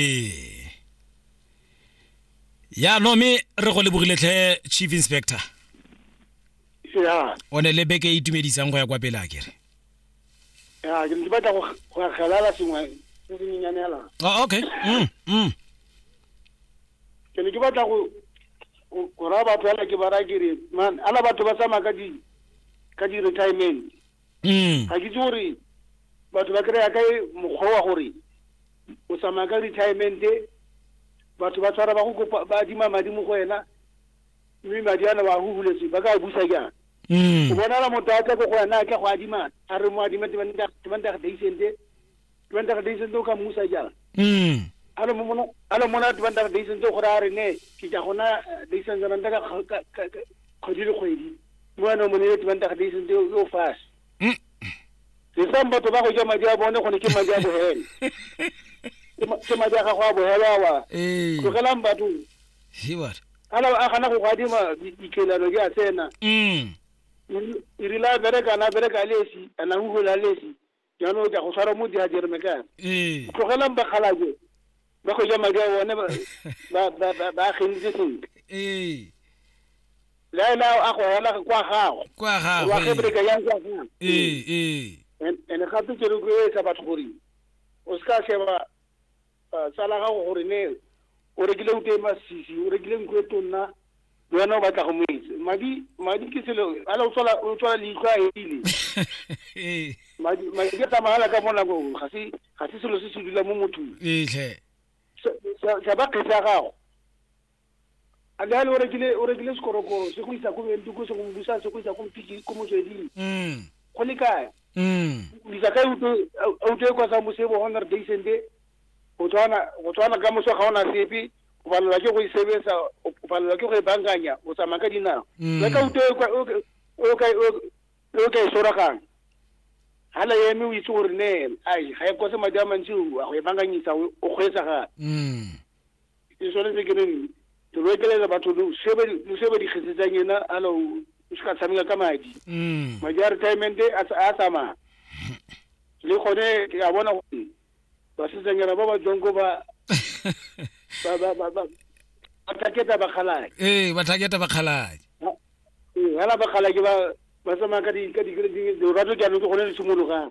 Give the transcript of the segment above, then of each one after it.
ee ya no me re go lebogile tlhe chief inspector ya o ne le beke e itumedisang go ya kwa pele a kere ya ke ne ke batla go go akgelala sengwe se se menyanela oh, okay mm, mm. ke ne ke batla go go- go raya batho ala ke ba raya ke re man ala batho ba tsamaya ka di ka di-retirement mm. ga ke itse gore batho ba kry-a ka mokgwa wa gore o tsamaya ka retiremente batho ba tshwara ba go kopa ba adima madi mo go wena mme madi ana wa go huletse ba ka busa jang mm. o bonala motho a tle ko go wena a tle go adima a re mo adima temantage daisente dibantaga di sentse o ka mmusa jang mm a lo mona a lo mona dibantaga di sentse gore a re ne ke ja gona di sentse ranta ka kg- ka- ka- ka- kgwedi le kgwedi mo wena o monile dibantaga di sentse o fase Mm. ke sa batho ba go ja madi a bone gone ke madi a bohele Ke ma- ke madi a gago a bohele awa ee tlogelang batho he what a la- a gana go go adima di- dikelelo di a tsena mm e rile a berekana a bereka a lesi a na ugola a lesi jaanong o ja go tshwara mo di hajereme kana ee tlogelang bakgalaje ba go ja madi a bone ba ba- ba- ba- ba agenitse sentle ee le a ele a go hela kwa gago kwa wa gagwe gebreka yang kwa gago ee ee And- and gape ke rotloetsa batho gore o se ka sheba Ah, tsala gago gore ne o rekile ute e masisi o rekile nku e tonna le wena o batla go mo etse madi madi ke selo ale o tswala o tswala leitlho a ele ee madi madi a tsamagala ka bonako ga se ga se selo se se dula mo mothong etlhe sa ba kgetse ya gago Adali o rekile o rekile sekorokoro se go isa ko Bentuko se go busa se go isa ko Mpiki ko motsweding. Mm. Go le kae? Mm. Bisa ka uto uto e kwa sa mosebo hona re dei sende. Go tswana go tswana ka moso ga ona sepe. O balelwa ke go e sebetsa, o balelwa ke go e bankanya, o tsamaya ka dinao. Mm. Le ka uto e kwa o ka- o ka o ka e soragang. Hala yeme o itse gore ne ai ga e kose madi a mantsi o a go e bankanyisa o o kgweetsa gape. Mm. ke tshwanetse ke reng ke loekelela batho lo se ba dikgesetsang ena alo o se ka tshameka ka madi mm. madi a retirement a tsamaya le gone ke a bona gore basetsanyana ba ba tswang ko ba bathaketa bakgalake ee bathaketa bakgalake fela bakgalake ba ba tsamaya ka di-grading lorato jaanong ke gone le simologang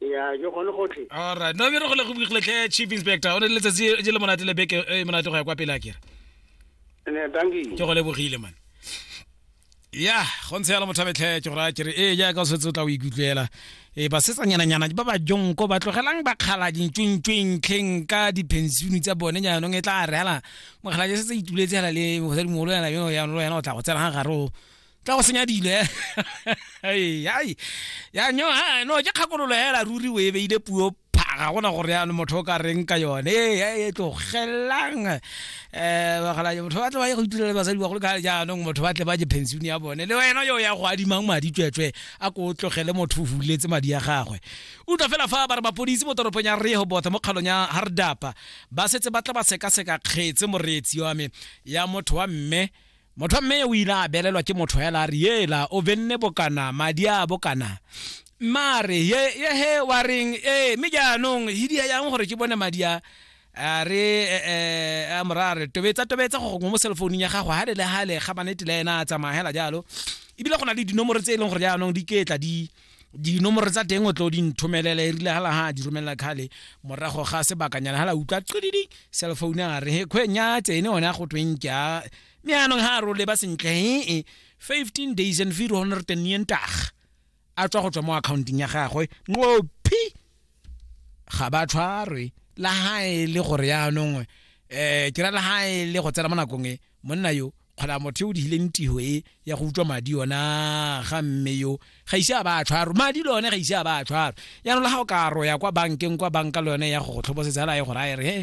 ya ke gone gotlhe alright no bere go le go bogile tlhe chief inspector o ne le letsatsi e le monate le beke e monate go ya kwa pele a kere ne danki ke go lebogile man ya go ntshe yalo motho betlhe ke gore a kere ee jaaka o setse o tla o ikutlwela ee basetsanyananyana ba ba jonko ba tlogelang ba kgala dintšwentšweng tlheng ka diphensione tsa bone jaanong e tla re hela mokgala je setse ituletse hela le mosadimogolo yana yono yana o tla go tsena ga gare o tla go senya dilo eh. Ai, ai. ya nyo ha, no ke kgakololo hela ruri o e beile puo phaga gona gore yana motho o ka reng ka yone e ya e tlogelang um bagala motho ba tle ba ye go itirela basadi bagolo ka jaanong motho ba tle ba je pension ya bone le wena yo ya go adimang madi tsweetswe a ko o tlogele motho o huletse madi ya gagwe utlwa fela fa ba re mapodisi mo toropong ya rehobotha mo kgalong ya hardapa ba setse ba tla ba sekaseka kgetse moreetsi wa me ya motho wa mme Motho wa mme o ile a belelwa ke motho hela a re yela o benne bokana madi a bokana mme a re ye ye he wa reng ee mme jaanong hidia yang gore ke bone madi a a re eh, eh, a mora a re tobetsa tobetsa go gongwe mo cellfounung ya gago hale le hale ga manete le ena a tsamaya hela jalo ebile go na le dinomoro tse e leng gore jaanong di ketla di dinomoro tsa teng o tlo di nthomelela erile ga laga a di romelela kgale morago ga sebakanyana ga la utlwa qididi cell phone a re he kgweng ya tsene one a go tweng ke a mme anong ga a role ba sentle ee 15 days and 400 and yentag a tswa go tswa mo accounting ya gagwe nqophi ga ba tshwarwe la ga e le gore yaanong um ke ra la ga e le go tsena mo nakong e monna yo kgola motho o digileng tiro e ya go utswa madi ona ga mme yo ga ise a ba a tshwaro madi le one ga ise a ba a tshwaro yaanong le ga o ka roya kwa bankeng kwa banka le yone ya go go tlhobosetsa la ye gore a e re he